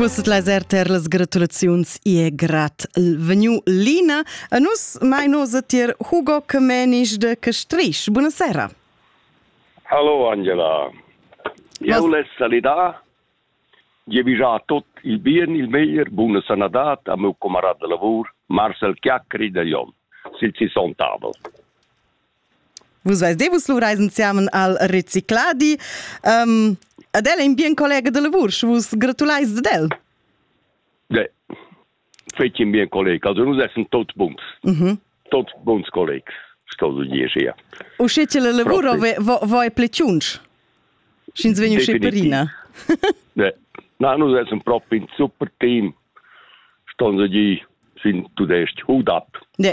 Vus laser ter las gratulaziuns e grat vegnu Lina. A nus mai nos tier Hugo Kemenisch de Castrisch. Buonasera. Hallo Angela. Eu les salidar. Je vijà tot il bien, il meglier, buna sanadat a meu camarad de lavur, Marcel Chiacri de Lyon. Sil ci son tavol. Vus veis de vus luvreis ensemen al recicladi. Um, ad el è in bien collega de lavur, și vus gratuleis ad el. Ne, feci in bien collega, also nus essen tot buns. Mhm. Tot buns collegs, sto du dir sia. O sche ce le lavuro voi pleciunci? Sch'ins vegn usce perina. ne, na, nus essen proprio in super team. Ston sie die, sind tudest hut ab. Ne.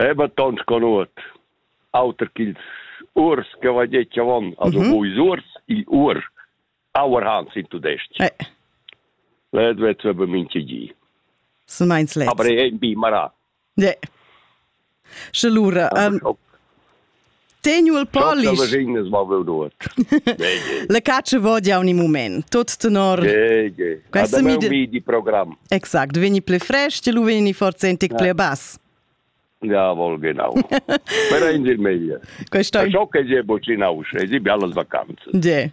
Eba tons conuot auter ch'ils urs che vai detg avon, also mhm. buis urs, il ur, our Hans in tudestg. Eh. Led vet be minche gi. Sun meins let. Aber ein bi mara. Ne. Sche lura, um, Teniu il polish. Le cacce vodia ogni moment, tot tenor. Ge, ge. Questa mi di programm. Exact, veni ple fresh, ti lu veni forse entic ple bass. Ja, vol genau. Per in dir meglio. Questo è ciò che è bocinaus, e si biallas vacanze. Ge.